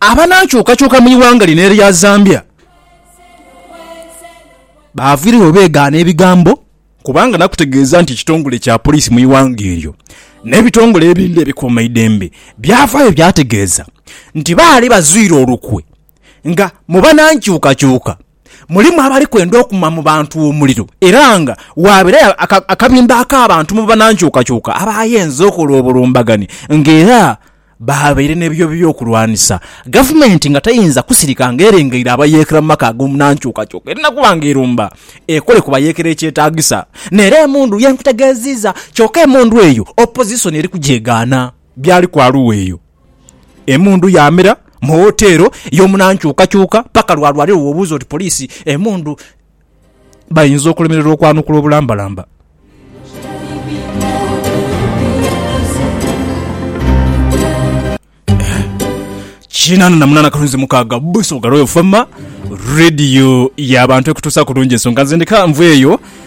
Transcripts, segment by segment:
Abanaakyukakyuka mu ighanga lino erya Zambia baaviiregho beegaana ebigambo kubanga nakutegeeza nti ekitongole kya poliisi mu ighanga eryo n'ebitongole ebindi ebikuumaidembe byavaayo byategeeza nti baali bazwire olukwe nga mu banankyukakyuka Mulimu abali kwenda okuma mu bantu omuliro era nga waaberayo akabinda ak'abantu mu banankyukakyuka abaayenze okola obulumbaganhi nga era baabaire n'ebyo by'okulwanisa. Gavumenti nga teyinza kusirika nga erengeire abayeekera mu maka ag'omunankyukakyuka erina kuba nga erumba ekole ku bayeekera ekyetaagisa. N'era emundu ye nkutegeeziiza kyoka emundu eyo Opozisoni eri kugyegaana. Byali kwa Luweero. Emundu yaamera mu woteero y'omunankyukakyuka paka lwa lwaliro w'obuuza oti poliisi emundu bayinza okulemererwa okwanukula obulambalamba. Kinaana na munaana kalunzi mukaaga Busoga Royal Fm Radio y'abantu ekutuusaku bulungi ensonga nze ndeka nveeyo.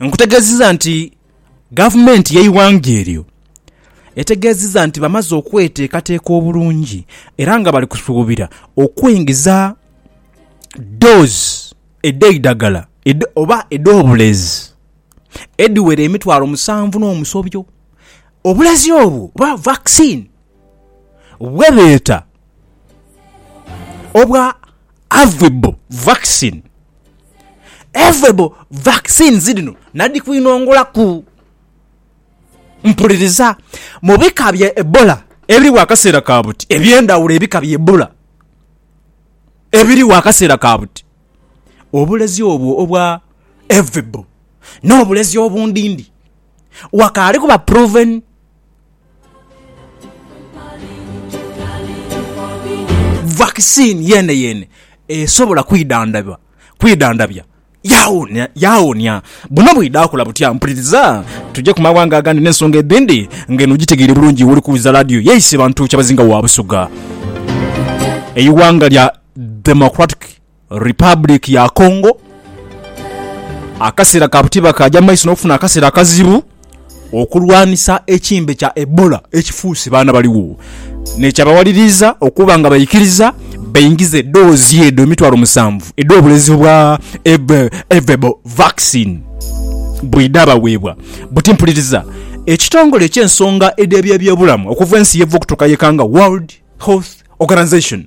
Nkutegeziza nti gavumenti yeighanga eryo etegeziza nti bamaze okwetekateka obulungi era nga bali kusubira okweingiza doozi edheidhagala oba edhobulezi edhiwera emitwalo musanvu nomusobyo obulezi obwo oba vaccine. bwe beeta obwa Avibor vaccine. Avibor vaccines dhino nadhi kwinongolaku. Mpuliriza, mu bika bya Ebola ebirigho akaseera ka buti, eby'endhaghulo ebika bya Ebola ebirigho akaseera ka buti, obulezi obwo obwa Avibor n'obulezi obundhindhi, wakaali kuba proven. Vakisiini yeeneyeene esobola kwidhandhaba, kwidhandhabya, yawonia. Buno bwidha kola butya? Mpuliriza tuje ku maghanga agandi n'ensonga edhindi ng'eno ogitegeire bulungi wooli kuwuliza laadiyo yaisee. Bantu kyabazinga wa Busoga, eighanga lya Democratic. Republic ya Congo, akaseera ka buti bakaagya mu maiso n'okufuna akaseera akazibu okulwanisa ekimbe kya Ebola ekifuuse baana baligho n'ekyabawaliriza okuba nga baikiriza baingize doozi edho emitwalo musanvu edh'obulezi obwa Ervebo vaccine bwedhabaweebwa. Buti mpuliriza ekitongole eky'ensonga edh'eby'ebyobulamu okuva ensi y'eva okutuuka y'ekanga World Health Organization,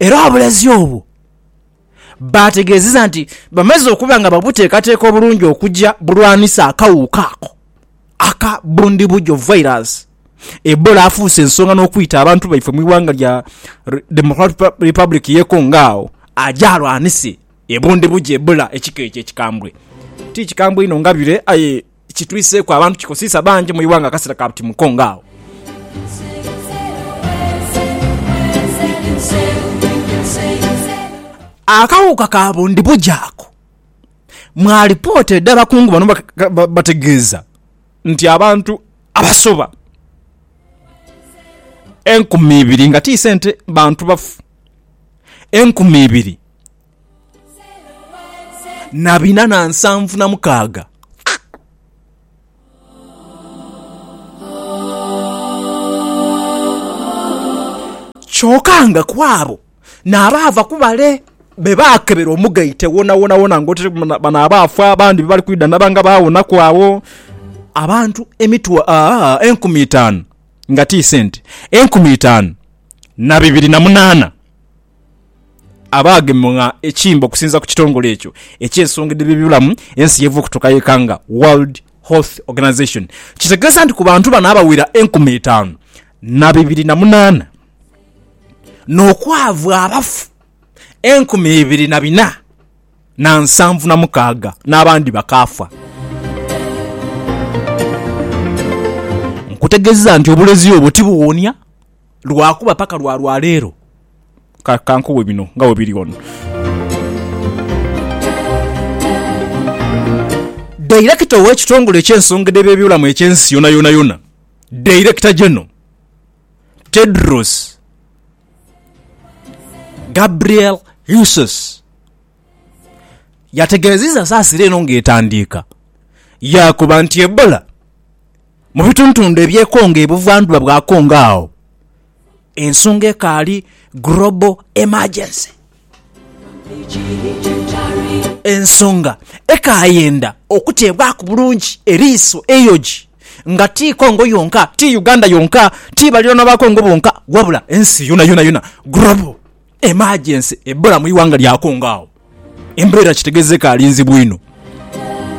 Era obulezi obwo baategeezezza nti bamaze okuba nga babuteekateeka obulungi okugya bulwanisa akawuuka ako aka Bundibugyo Virus. Ebola afuuse ensonga n'okwita abantu baife mu ighanga lya Democratic Republic y'e Congo agho aje alwanise e Bundibugyo Ebola ekika ekyo ekikambwe. Ti kikambwe inho nga bire aye. kitwiseeku abantu kikosiisa bangi mu ighanga akasera ka buti muko nga agho. Akawuuka ka bundibugyo ako mu alipoota edha bakungu bano bategeeza nti abantu abasoba enkumi ibiri nga ti sente bantu bafu enkumi ibiri na bina na nsanvu na mukaaga. Kyoka nga ku abo n'abaava ku bale be baakebera omugaite wonawonawona ng'oti bano abaafa abandi be bali kwidha naba nga baawonaku agho, abantu emitwa... aa enkumi itaanu, nga ti sente, enkumi itaanu na bibiri na munaana. abaagemwa ekimbe okusinza ku kitongole ekyo eky'ensonga edh'eby'obulamu ensi y'eva okutuuka y'ekanga, World Health Organization, kitegeeza nti ku bantu bano abawera enkumi itaanu na bibiri na munaana n'okwaavu abafu enkumi ibiri na bina na nsanvu na mukaaga n'abandi bakaafa. Nkutegeziza nti obulezi obwo tibuwonia. lwakuba paka lwa lwaleero ka, ka nkuwe bino nga bwe biri wano. Dairekita ow'ekitongole eky'ensongede by'ebyobulamu eky'ensi yonayonayona, Director General Tedros Gabriel Ghessus yategeezizza saasira eno ng'etandiika, yaakoba nti Ebola, Mu bitundutundu ebyekonga ebuvandhuba bwa Congo agho ensonga ekaali Global Emergency. Ensonga ekayenda okuteebwaku bulungi eriiso eyoji nga ti Congo yonka, ti Uganda yonka, ti balirwana ba Congo bonka wabula ensi yonayona yona Global Emergency ebula mu ighanga lya Congo agho. Embeera kitegeza ekaali nzibu inho.